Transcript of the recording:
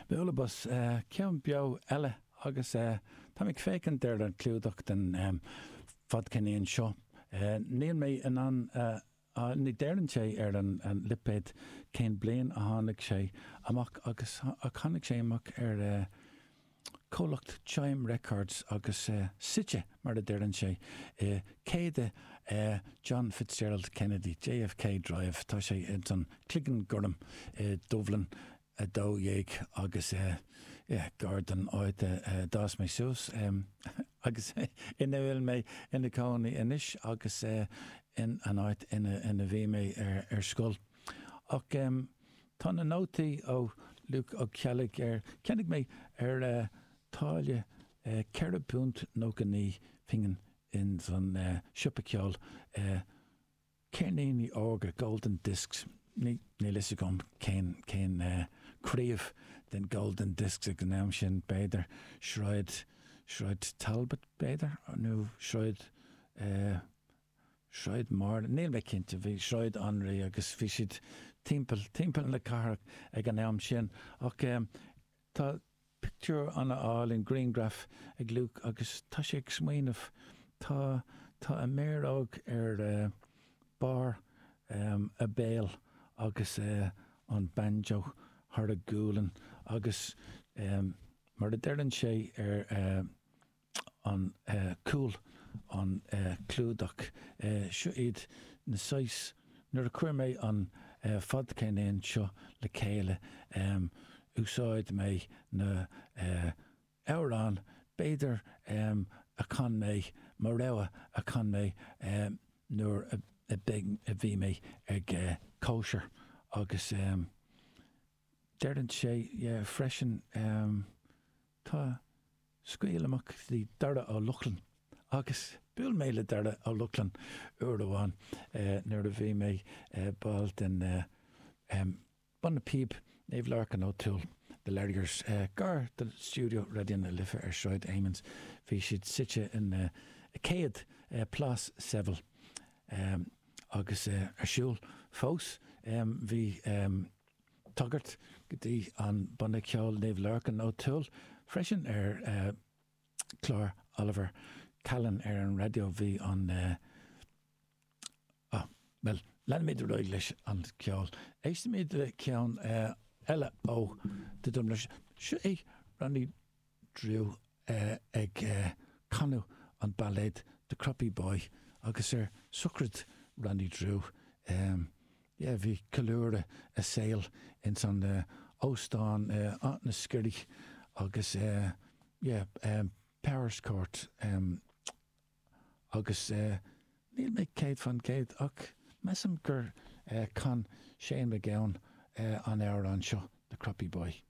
Bhuel, ambaist ceann beo eile agus táim ag féachaint ar an clúdach den fadcheirnín seo. Níl mé in ann a, ní deireann sé ar an lipéad cén bliain a tháinig sé amach ach tháinig sé amach ar. comhlacht Chime Records agus suite, mar a deireann sé, i 100 John Fitzgerald Kennedy, JFK, Drive, tá sé ins an Cloigeann Gorm i Dubhlinn 12 agus yeah, gar don áit a d'fhás mé suas agus ina bhfuil mé ina cónaí anois agus an áit ina bhí mé ar scoil. Ach. Tá na nótaí ó Luke Ó Ceallaigh ar cheannaigh mé ar táille ceithre phunt nócha naoi pingin ins an siopa ceoil Ceirníní Órga, Golden Discs, níl fhios agam cén craobh den Golden Discs ag an am sin, b'fhéidir Sráid Talbot b'fhéidir nó Sráid Sráid Máire, níl mé cinnte, bhí Sráid Anraí agus bhí siad timpeall, timpeall na cathrach ag an am sin. Ach eh tá pictiúr an-álainn, grianghraf ag Luke agus tá sé ag smaoineamh, tá, tá a méaróg ar eh barr em a béil agus eh an banjo thar a gualainn agus em mar a deireann sé ar eh, an cúl, an clúdach, seo iad na saghas, nuair a chuir mé an fadcheirnín seo le chéile úsáid mé na hamhráin b'fhéidir a chan mé, mo rogha a chan mé nuair a bhí mé ag cóisir agus deireann sé freisin. Tá Scaoil Amach le Darragh Ó Lochlainn agus bhuail mé le Darragh Ó Lochlainn uair amháin nuair a bhí mé ball den bhanna píob Naomh Lorcán O'Toole, The Larriers, gar do stiúideo Raidió na Life ar Shráid Amiens. Bhí siad suite in 100 Plás Seville agus ar siúl fós. Bhí. tagairt go dtí an banna ceoil Naomh Lorcán Ó Toole freisin ar chlár Oliver Callan ar an raidió. Bhí an. Á, bhuel, leanfaimid ar aghaidh leis an ceol. Éistfimid le ceann eile ó The Dubliners. Seo é Ronnie. Drew ag canadh an bailéad The Croppy Boy agus ar sochraid Ronnie Drew, yeah, bhí ceiliúradh a saoil ins an óstán Áth na Sceire agus yeah, Powerscourt agus níl mé céad faoin gcéad ach measaim gur chan Shane MacGowan an amhrán seo, The Croppy Boy.